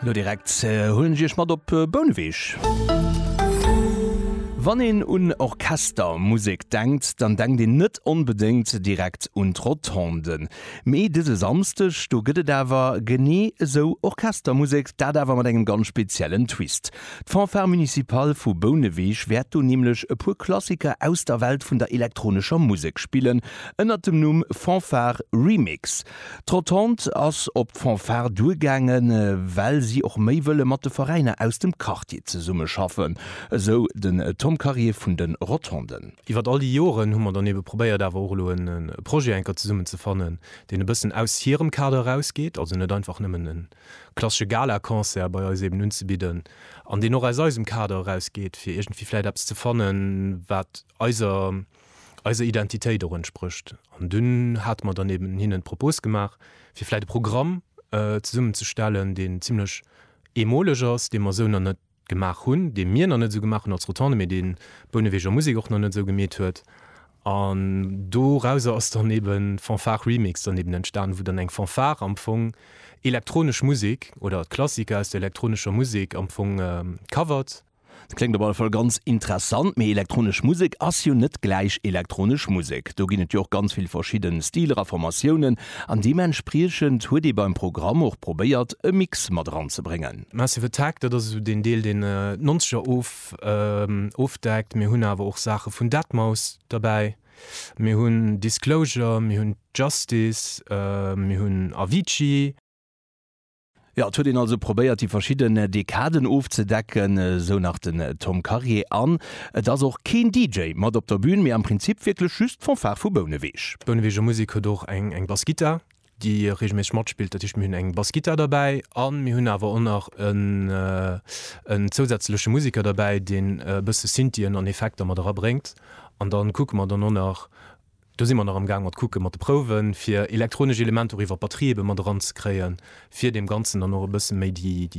Lo direkt huelen ech iech mat op Bouneweg. Wann een un Orchestermusek denkt, dann denkt een net onbedéngt direkt un d'Rotonde. Mee dëse Samsdeg, do gëtt et awer genee esou Orchestermusek, dat awer mat engem ganz speziellen Twist. D'Fanfare Municipale vu Bouneweg wäert do nämlech e puer Klassiker aus der Welt vun der elektronescher Musek spillen, ënnert dem Numm Fanfare Remix. D'Rotonde ass op d'Fanfare duergaangen, well si och méi wëlle mat de Veräiner aus dem Quartier zesummeschaffen, esou den Tom Karier vun de Rotonden. Iwwert all déi Joren hu mer dann ebe probéiert awer och elo e Projet enker zesummen ze fannen, deen e bëssen aus hirem Kader erausgeet, also net einfach nëmmen e klassesche Galaconcert bei eis eben unzebidden, an deen och aus eisem Kader erausgeet, fir iergendwéi vläit eppes ze fannen, wat eiser. eiser Identitéit och entsprécht. An dunn hate mer dann eben hinnen d'Propos gemaach, fir vläit e Programm zesummenzestellen, deen zimlech eemoleg ass, dee mer esou nach net gemaach hunn, dee mir nach net esou gemaach hunn als Rotonde, mee dee Bouneweger Musek och nach net esou gemeet huet. An dorauser ass dann eben Fanfare Remix dann eben entstanen, wou dann eng Fanfare am Fong elektronesch Musek oder Klassiker aus der elektronescher Musek am Fong covert. Kléngt op alle Fall ganz interessant, mee elektronesch Musek ass jo net gläich elektronesch Musek. Do ginn et jo och ganz vill verschidden Stiler a Formatiounen an deementspriechend huet ee beim Programm och probéiert e Mix mat eran ze bréngen. Massive Attack, dat ass esou deen Deel deen d'Nonzeger ofdeckt. Mir hunn awer och Saache vun Deadmau5 derbäi, mir hunn Disclosure, mir hunn Justice, mir hunn Avicii. Jo, et huet een also probéiert déi verschidden Dekaden ofzedecken, esou nach den Tom Karier. An et ass och keen DJ mat op der Bün, mee am Prinzip wierklech just d'Fanfare vu Bouneweeg. D'Bouneweeger Musek huet och eng Bassgittar, déi reegelméisseg matspillt. Dat heescht, mir hunn eng Bassgittar derbäi a mir hunn awer och nach en zousätzleche Museker derbäi, deen e bësse Synthien an Effekter mat erabréngt. An da kucke mer dann och nach. Do si mer nach am Gaang mat kucke mat de Prouwen, fir elektronesch Elementer och iwwer d'Batterie ebe mat eran ze kréien, fir deem Ganzen dann och e bësse méi déi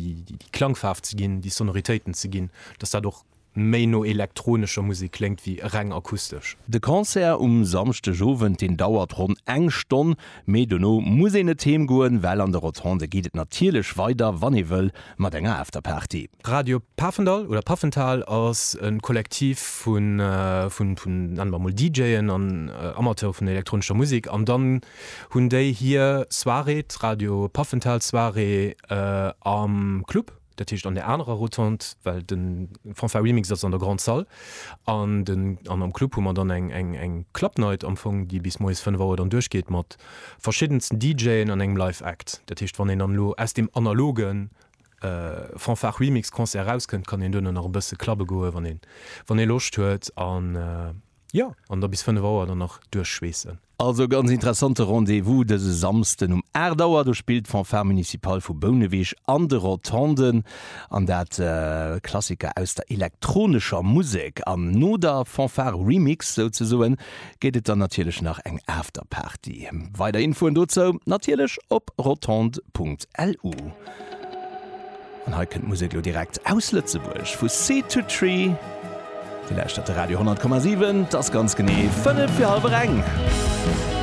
Klangfaarf ze ginn, déi Sonoritéiten ze ginn, dass dat och méi no elektronescher Musek kléngt wéi reng akustesch. De Concert um Samschdegowend, deen dauert ronn eng Stonn. Mee dono muss een net heem goen, well an de Rotonde geet et natierlech weider, wann ee wëll, mat enger Afterparty. Radio Pafendall oder Pafenthal ass e Kollektiv vun, nennen mer emol, DJen an Amateure vun der elektronescher Musek. An dann hunn déi hir Soirée, d'Radio Pafenthal Soirée am Club. Dat heescht an där anerer Rotonde, well de Fanfare Remix ass an der Grande Salle an den an am Club hu mer dann eng eng eng Club Night am Fong, déi bis moies 5 Auer dann duerchgeet mat verschiddensten DJen an engem Live Act. Dat heescht wann een dann elo aus deem analoge Fanfare Remix Concert erauskënnt, kann een duerno nach e bësse clubbe goe wann ee wann ee Loscht huet an jo an da bis 5 Auer dann nach duerchschweessen. Also e ganz interessante Rendez-vous dëse Samsden um 8 Auer. Do spillt d'Fanfare Municipale vu Bouneweg an de Rotonden an dat Klassiker aus der elektronescher Musek. An no der Fanfare Remix souzesoen gétt et dann natierlech nach eng Afterparty. Weider Infoen dozou natierlech op rotond.lu. An hei kënnt d'Musek elo direkt aus Lëtzebuerg, vu Seed to Tree. Dir lauschtert de Radio 10,7, et ass ganz genee fënnef fir hallwer eng.